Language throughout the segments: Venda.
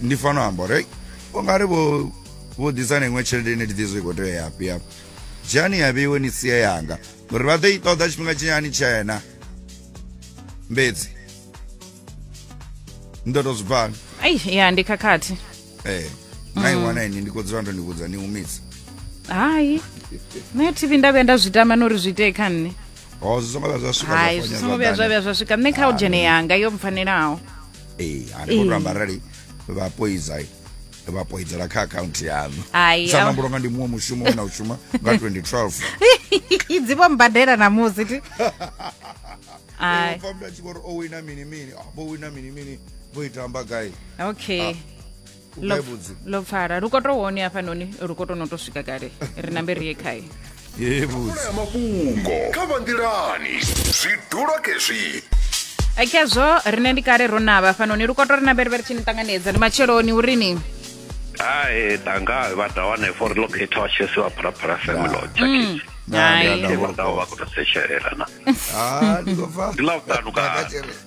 ndi fano amba uri u nga ri vho vho ḓisa na iṅwe tshelede ine ndi ḓizwe i khou tea ya hafhi hafho dzhiani ya vheiwe ni sie yanga uri vha ḓo i ṱoḓa tshifhinga tshinyani tshena mbedzi ni ḓo to zwi bvana ai ya ndi khakhathi ee na i wana ini ndi khou dzula ndo ni vhudza ni humisa hai nṋe tv nda vhuya nda zwi tama na uri zwi itee kha nṋe ho zwi songo vha zwa swika zwa hai zwi ponya songo vhuya zwa zwanḓani. vhuya zwa swika nṋe kha u dzhene yanga yo mpfanelaho ee hani vho amba arali vha poiza vha poidzela kha akhaunthu yanu sa nambulo nga ndi muṅwe mushumo we na u shuma nga 2012 dzi vho mbadela na musi ti pfa mndu a tshi vho ri o wina mini mini ah, vho wina mini mini vho itamba gai okay ah. lo pfala ri koto wone hafhanoni ri koto no to swika kale ri nambe ri ye khae ya mafhungo kha vha nḓilani zwi dula kezwi khezwo rine ndi kale ro navha hafhanoni ri koto ri nambe ri vhe ri tshi ni ṱanganedza ndi matsheloni urini hai tanga vha da wane for locate wa tshesi wa phalaphala semelo chakisi hai vha da vha kutasetshelela na ah ndi ko fa ndi la u tanuka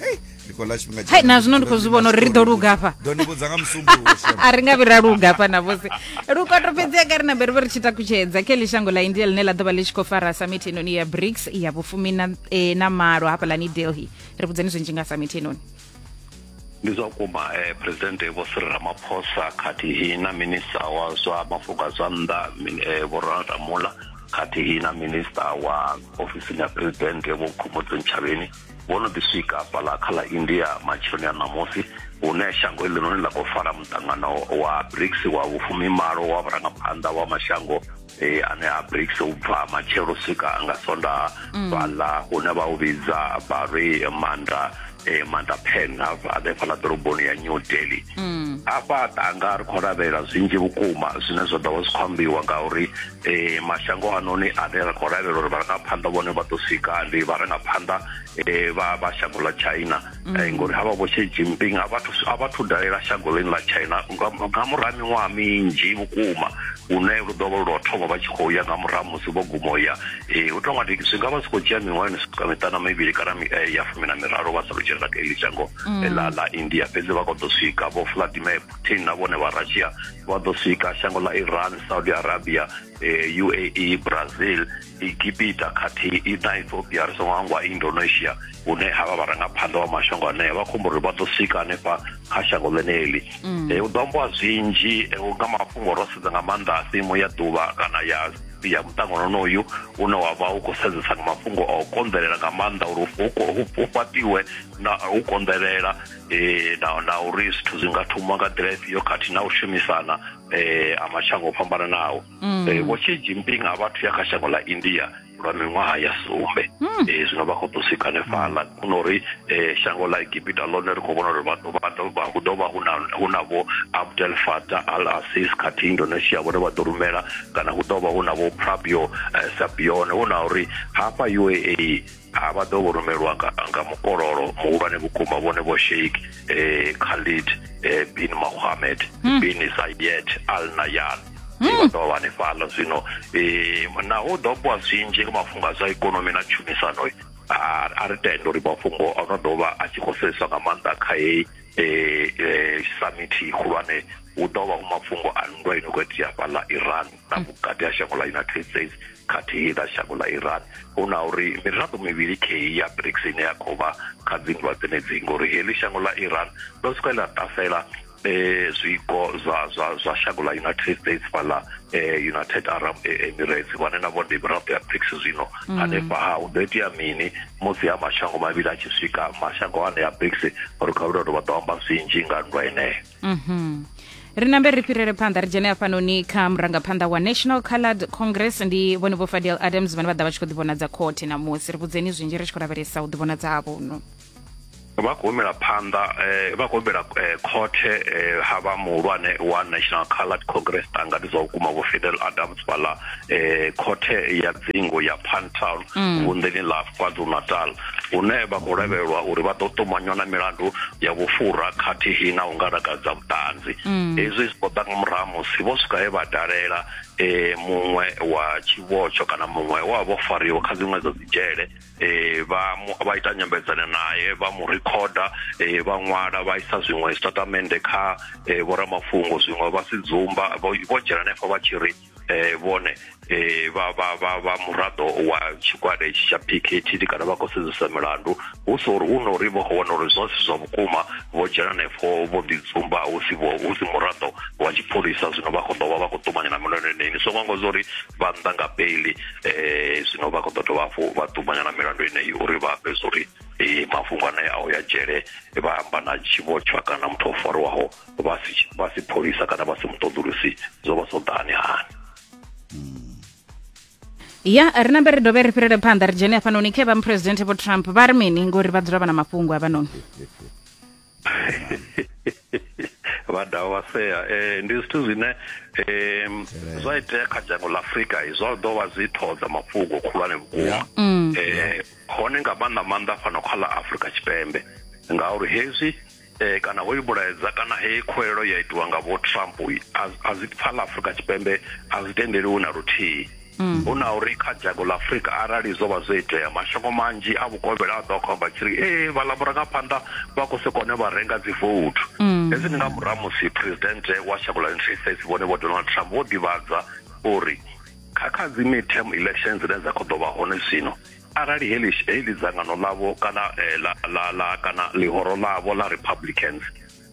hei ndi khou ḽa tshifhinga hai na zwino ndi khou zwi vhona uri ri ḓo luga hafha ḓo ni vhudza nga musumbuluwo shem a ri nga vhi ra luga hafha na vhose lukoto fhedzia kha ri na bere vho ri tshi takutshedza khe ḽi shango ḽa india ḽine ḽa ḓo vha ḽi tshi khou fara samithi heinoni ya brics ya vhufumi na, eh, na malo hafhaḽani delhi ri vhudzeni zwinzhi nga samithi heinoni ndi zwa vhukuma eh, presidente vho siri ramaphosa khathihi na minista wa zwa mafhungo a zwa nnḓa min- eh, vho ronald ramula khathihi na minista wa ofisini ya presidente vho khomodzi ntshavheni vho no ḓi swika fhaḽa kha ḽa india matsheloni a ṋamusi hune shango iḽinoni ḽa khou fara muṱangano wa brics wa vhufumi malo wa vhurangaphanḓa wa mashango eh, ane a brics u bva matshelo swika nga sonda mm. fhaḽa hune vha u vhidza vhari manda eh, manda pen hanefhaḽa ḓoroboni ya new delhi mm. afha tanga ri khou lavhelela zwinzhi vhukuma zwine zwa ḓo vha zwi khou ambiwa ngauri e, mashango anoni ane ra khou lavhelela uri vharangaphanḓa vhone vha ḓo swika ndi vharangaphanḓa e, vha vha shango ḽa china mm. e, ngori havha vho xi jinping a vha thu dalela shango ḽini ḽa china nga muraha miṅwaha minzhi vhukuma une lu ḓo vha lwa thoma vha tshi khou ya nga murahu musi vho guma u ya um hu tonga ndi zwi nga vha zwi khou dzhia miṅwaha ni swika miṱana mivhili kana eh, ya fumi na miraru vha sa lu dzhelela kha iḽi shango mm. ḽa ḽa india fhedzi vha kho ḓo swika vho vladimir putin na vhone vha russia vha ḓo swika shango ḽa iran saudi arabia eh, uae brazil egipita khathihi na ethiopia ri songo hangwa indonesia hune ha vha vharangaphanḓa wa mashango anea vha khombo uri vha ḓo swika hanefha kha shango ḽeneḽi mm. eh, hu ḓo ambiwa zwinzhi eh, nga mafhungo ro sedza nga maanḓa a simu ya ḓuvha kana ya ya muṱangano onoyu une wa vha u khou sedzesa nga mafhungo a u konḓelela nga maanḓa uri hu fhaṱiwe na u konḓelela eh, na, na uri zwithu zwi nga thoma nga nḓila ifhio khathihi na u shumisana eh, a mashango o fhambananaho Mm. eh, vho xi jinping a vhathu ya kha shango ḽa india lwa miṅwaha ya sumbe Mm. eh, zwino vha khou ḓo swika hanefhaḽa kuna uri eh, shango ḽa egipita ḽone ri khou vhona uri vha ḓo- vha ḓo- vha- hu ḓo vha hu na- hu na vho abdel fatah al asis khathihi indonesia vhone vha ḓo rumela kana hu ḓo vha hu na vho prabio eh, sabione hu na uri hafha uae a vha ḓo vho rumelwa nga, nga mukololo muhulwane vhukuma vhone vho sheik eh, khalid eh, bin mohammed hmm. bin saiyed al nayan hmm. vha ḓo vha hanefhala zwino eh, naho ḓo bwa zwinzhi nga mafhungo a zwa ikonomi na tshumisano a ri tenda uri mafhungo a no ḓo vha a tshi khou sedzeswa nga maanḓa kha heyi eh, eh, samithi khulwane hu ḓo vha hu mafhungo a nndwa ino khou itea fhaḽa iran na hmm. vhukati ha shango ḽa united states khathihi na shango ḽa iran hu na uri miraḓo mivhili kheyi ya brics ine ya khou vha kha dzinndwa dzenedzi ngori heḽi shango ḽa iran ḽo swika ḽa ṱasela eh zwiko zwa zwa zwa shango ḽa united states fhaḽa eh united arab e, emirates vhane na vhone miraḓo ya brics zwino mm. hanefha ha hu ḓo itea mini musi ha mashango mavhili a tshi swika mashango ane ya brics uri kha vhulalo vha ḓo amba zwinzhi nga nndwa eneyo Mhm. ri nambe ri fhirele phanḓa ri dzhene hafhanoni kha murangaphanḓa wa national coloured congress ndi vhone vho fadel adams vhane vha ḓa vha tshi khou ḓivhonadza khothe namusi ri vhudzeni zwinzhi ri tshi khou lavhelesa u ḓivhonadza havhono vha khou humela phanḓa eh, vha khou humbela eh, khothe eh, ha vha muhulwane wa national coloured congress tanga ndi zwa vhukuma vho fidel adams fhaḽa eh, khothe ya dzingo ya pantown vunḓeni ḽa kwazulu natal hune vha khou lavhelelwa uri vha ḓo ṱumanywa na milandu ya vhufhura khathihi na u nga lakadza vhuṱanzi mm. hezwi zwi ṱoḓa nga murahu musi vho swika he vha dalela e muṅwe wa tshivhotsho kana muṅwe wa vho fariwa kha dziṅwe dza dzidzhele e vha vha ita nyambedzano naye vha mu rikhoda e vha ṅwala vha isa zwiṅwe zwitatamende kha e, vhoramafhungo zwiṅwe vha si dzumba vho dzhena henefho vha tshi ri eh vhone eh vha vha vha vha muraḓo wa tshigwada itshi tsha PKTD kana vha khou sedzesa milandu hu so uri hu no uri vho wana uri zwa si zwa vhukuma vho dzhena nefho vho ḓi dzumba hu si vho hu si muraḓo wa tshipholisa zwino vha khou ḓo vha vha khou ṱumanya na milandu yeneyi so ngo zwa uri vha nnḓa nga beili eh zwino vha khou ḓo dovha hafhu vha ṱumanya na milandu yeneyi uri vha ambe zwa uri eh mafhungo anea a u ya dzhele vha amba na tshivhotshwa kana muthu o fariwaho vha si vha si pholisa kana vha si muṱoḓulusi zwo vha zwo ḓani hani ya ri nambe ri dovhe ri fhirele phanḓa ri dzhene hafhanoni khe vha muphuresidenthe vho trump vha ri mini ngori vha dzula vha na mafhungo avhanoni vha dovha vha sea um ndi zwithu zwine um zwa itea kha dzhango ḽa afrika zwa ḓo vha zwi ṱhodza mafhungo khulwane vhukuma um hone nga maanḓa maanḓa fhano kha ḽa afrika tshipembe ngauri hezwi eh kana hoyu mulaedza kana heyi khuwelelo ya itiwa nga vho trump a zwi pfa ḽa afrika tshipembe a zwi tendeliwi na luthihi mm. hu na uri kha dzhango ḽa afrika arali zwo vha zwo itea mashango manzhi a vhukovhela a ḓo khomba tshi ri ee vhaḽa murangaphanḓa vha khou si kone vha renga dzi vouthu mm. hezwi ndi nga murahu musi presidente wa shango ḽa united states vhone vho donald trump vho ḓivhadza uri kha kha dzi midterm elections dzine dza khou ḓo vha hone zwino arali heḽi heḽi dzangano ḽavho kana eh, la, la, la kana ḽihoro ḽavho ḽa republicans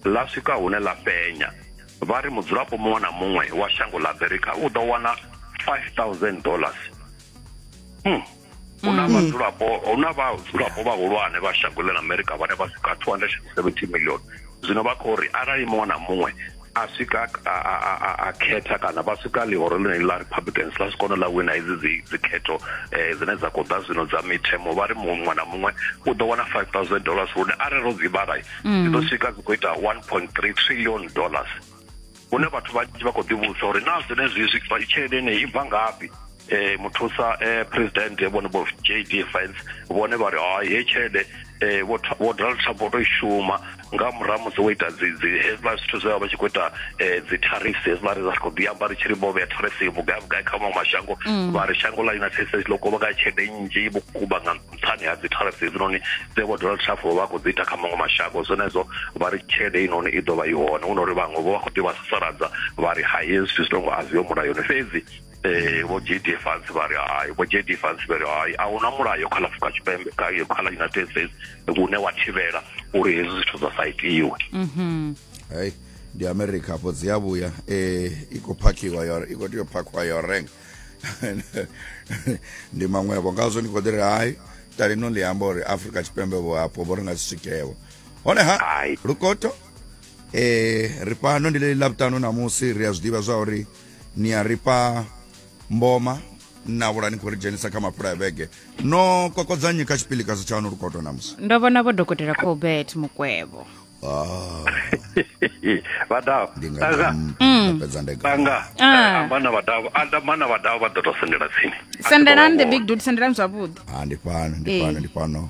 ḽa swika hune ḽa fhenya vha ri mudzulapo muṅwe na muṅwe wa shango ḽa america u ḓo wana 5000 dollars hmm. hu na mm. vhadzulapo hu na vhadzulapo vhahulwane vha shango ḽa america vhane vha swika 270 million zwino vha khou ri arali muṅwe na muṅwe a swika a khetha kana vha swika ḽihoro ḽine ḽa republicans ḽa swikono ḽa wina hedzi dzi dzikhetho um eh, dzine dza khou ḓa zwino dza mithemo vha ri muṅwe na muṅwe u ḓo wana five thousand dollars lune arali ro dzi vhala mm. dzi ḓo swika dzi khou ita one point three trillion dollars hune vhathu vhanzhi vha khou ḓivhudzisa uri naa zwenezwi tshelede ine i bva ngafhi eh muthusa eh president vhone vho JD Vance vhone vha ri ha ye tshelede eh vho vho Donald Trump to shuma nga murahu musi wo ita dzi dzi hezwiḽa zwithu zwe vha tshi khou ita eh, dzi tariffs hezwiḽa ri khou ḓi amba ri tshi ri vho vhea tariffs yo vhugai vhugai kha maṅwe mashango mm. vha ri shango ḽa United States ḽo kuvha nga tshelede nnzhi vhukuma nga nṱhani ha dzi tariffs hedzinoni dze vho Donald Trump vha khou dzi ita kha maṅwe mashango zwenezwo vha ri tshelede inoni i ḓo vha i hone hu no ri vhaṅwe vho vha khou ḓi vha sasaladza vha ri ha hezwi zwithu zwi tongo a zwi yo mulayoni fhedzi eh vho JD Vance vha ri hai vho JD Vance vha ri hai a huna mulayo kha Afrika Tshipembe kha kha la United States vhune wa thivhela uri hezwi zwithu zwa sa itiwe mhm hey ndi America hapo dzi ya vhuya eh i khou phakhiwa yo i khou tea u phakhiwa yo renga ndi maṅwevho ngazwo ndi khou ḓi ri hai talino ḽi amba uri Afrika Tshipembe vho hapo vho ri nga si swikewo hone ha lukoto eh ri fhano ndi ḽi ḽa vhutano namusi ri a zwi ḓivha zwa uri ni a rifha mboma na vhula ni khou ri dzhenisa kha mapfula ya vhege no kokodzanyi kha tshipilikazi tshaanu lukoto namusi ndo vhona vho dokotela colbert mukwevho Ah, vadau ndi nga tanga ndi- Mm. nda fhedza ndega tanga Ah. amba na vadau amba na vadau vha ḓo tou sendela tsini sendelani the big dude sendelani zwavhuḓi Ah, ndi fhano ndi Eh. fhano ndi fhano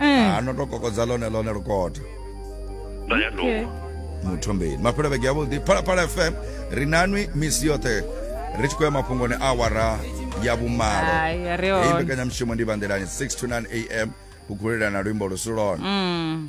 Eh. ano to kokodza lone lone lukoto nda ya ndo Okay. muthombeni mafhelo vhege yavhuḓi phalaphala fm ri nanwi misi yoṱhe ri tshi khou ya mafhungoni a awara ya vhumalo Hai, ri hone. Heyi mbekanyamushumo ndi vhanḓelani 6 to 9 am u gulelana luimbo lu si lone Mm.